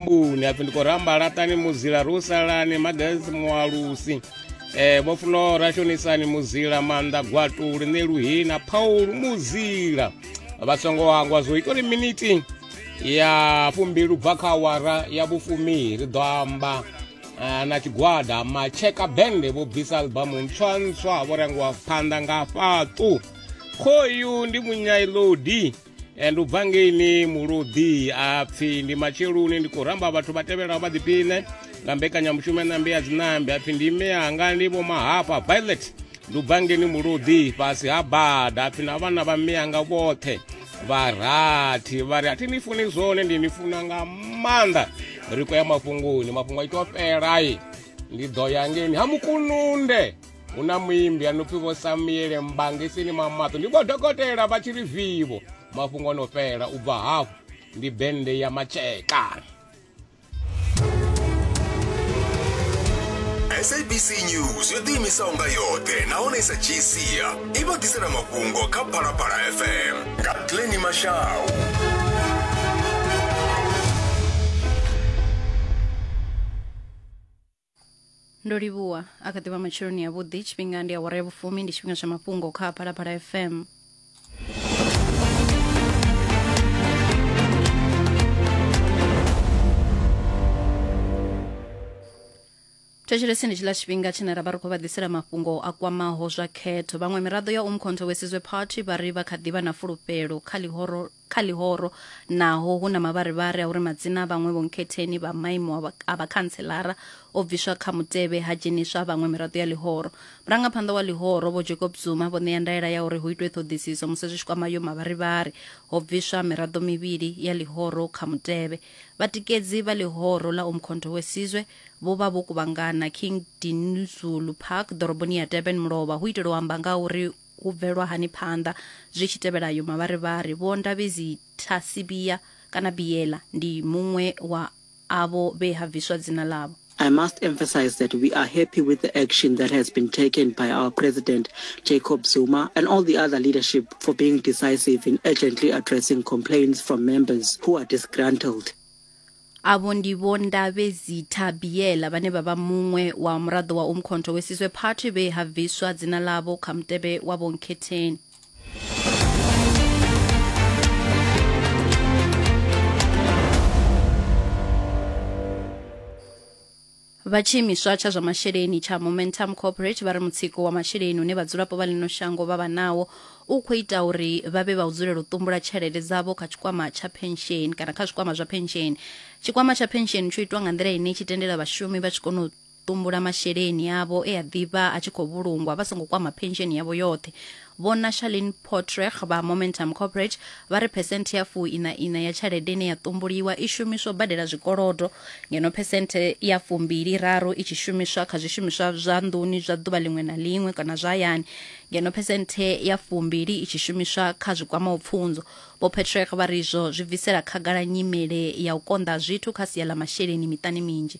mbuni apfi ndi khou ramba laṱani muzila ri u salani magalsi mualusi um eh, vho funo ra shonisani muzila maanḓa gwatuli ne luhina phaulu muzila vha songo hangwa zwo ita uri miniti ya fumbilu bva kha awara ya vhufumi ri ḓo amba eh, na tshigwada matsheka bende vho bvisa albamu ntswa ntswa vho rengiwa phanḓa nga fhaṱu khoyu ndi munyailodi e ndi u bva ngeini muluḓi a pfhi ndi matsheloni ndi khou ramba vhathu vha tevhelaho vha ḓipine nga mbekanyamushumo ya ṋambe ya dzinambe a pfhi ndi ime yanga ndi vho mahafha violet ndi u bva ngeini muluḓi fhasi ha bada a pfhi na vhana vha mme yanga vhoṱhe vharathi vha ri a thi ni funi zwone ndi ni funa nga maanḓa ri khou ya mafhungoni mafhungo a itiwa fhelai ndi ḓo ya ngeini ha mukununde hu na muimbi a no pfi vho samuele mbange sini mamaṱo ndi vho dokotela vha tshi ri vivo mafhungo o no fhela u bva hafhu ndi bende ya matsheka sabc news yo ḓiimisaho nga yoṱhe nahone i sa dzhii sia i vha ḓisela mafhungo kha phalaphala fm nga tleni mashau ndo livhuwa a kha ḓivha matsheloni ya vhuḓi tshifhinga ndi awara ya vhufumi ndi tshifhinga tsha mafhungo kha phalaphala fm thetsheleseni tshiḽa tshifhinga tshine ra vha ri khou vha ḓisela mafhungo a kwamaho zwa khetho vhaṅwe miraḓo ya umkhonto wesizwe party vha ri vha kha ḓivha na fulufhelo kha ḽihoro kha ḽihoro naho hu na mavharivhari a uri madzina a vhaṅwe vhonkhetheni vha maimo a vha- a vhakhanselara o bviswa kha mutevhe ha dzheniswa a vhaṅwe miraḓo ya ḽihoro. Murangaphanḓa wa ḽihoro, Vho Jacob Zuma, vho ṋea ndaela ya uri hu itwe ṱhoḓisiso musi zwi tshi kwama ayo mavharivhari, ho bviswa miraḓo mivhili ya ḽihoro kha mutevhe. Vhatikedzi vha ḽihoro ḽa Umkhonto We Sizwe vho vha vho kuvhangana King Dinuzulu Park ḓoroboni ya Durban mulovha hu itela u amba nga ha uri Hu bvelwa hani phanḓa zwi tshi tevhela ayo mavharivhari? Vho Ndabezi Thasibiya kana Biyela ndi muṅwe wa avho vhe ha bviswa dzina ḽavho. I must emphasize that we are happy with the action that has been taken by our President Jacob Zuma and all the other leadership for being decisive in urgently addressing complaints from members who are disgruntled. Avho ndi Vho Ndabezitha Biyela vhane vha vha muṅwe wa muraḓo wa Umkhonto Wesizwe Party vhe ha bviswa dzina ḽavho kha mutevhe wa Vho Nkhetheni. Vha tshiimiswa tsha zwa masheleni tsha Momentum Corporate vha ri mutsiko wa masheleni une vhadzulapo vha ḽino shango vha vha nawo u khou ita uri vha vhe vha u dzulela u ṱumbula tshelede dzavho kha tshikwama tsha phensheni kana kha zwikwama zwa phensheni. Tshikwama tsha phensheni tsho itwa nga nḓila ine tshi tendela vhashumi vha tshi kona u ṱumbula masheleni avho e a ḓivha a tshi khou vhulungwa vha songo kwama phensheni yavho yoṱhe Vho Nashalin Pottreg vha Momentum Corporate vha ri phesenthe ya fu ina ina ya tshelede ine ya ṱumbuliwa i shumiswa u badela zwikolodo, ngeno phesenthe ya fu mbili raru i tshi shumiswa kha zwishumiswa zwa nḓuni zwa ḓuvha ḽiṅwe na ḽiṅwe kana zwa hayani, ngeno phesenthe ya fu mbili i tshi shumiswa kha zwi kwamaho pfunzo. Vho Pottreg vha ri izwo zwi bvisela khagala nyimele ya u konḓa ha zwithu kha sia ḽa masheleni miṱani minzhi.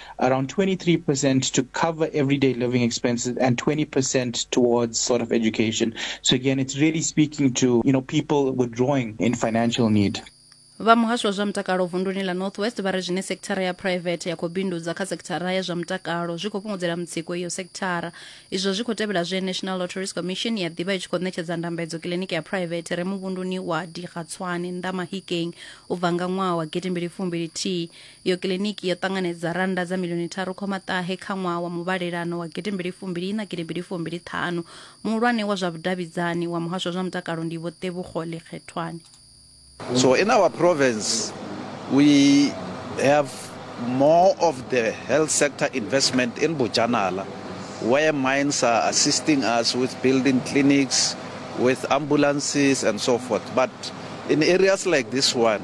around 23% to cover everyday living expenses and 20% towards sort of education. So again, it's really speaking to, you know, people withdrawing in financial need. vha muhasho wa zwa mutakalo vunduni la northwest vha ri zwine sekithara ya private ya khou bindudza kha sekithara ya zwa mutakalo zwi khou fhungudzela mutsiko iyo sekithara izwo zwi khou tevhela zwe national lotteries commission ya ḓivha i tshi khou ṋetshedza ndambedzo kiliniki ya private re muvhunduni wa digatswane nnḓa mahikeng u bva nga ṅwaha wa gidimbili fumbili thihi Iyo kiḽiniki yo ṱanganedza rannda dza miḽioni tharu khoma ṱahe kha ṅwaha wa muvhalelano wa gidi mbili fumbili ina gidi mbili fumbili ṱhanu. Muhulwane wa zwa vhudavhidzani wa muhasho wa zwa mutakalo ndi Vho Tebogo Lekgethwane. So in our province we have more of the health sector investment in Bojanala where mines are assisting us with building clinics, with ambulances and so forth but in areas like this one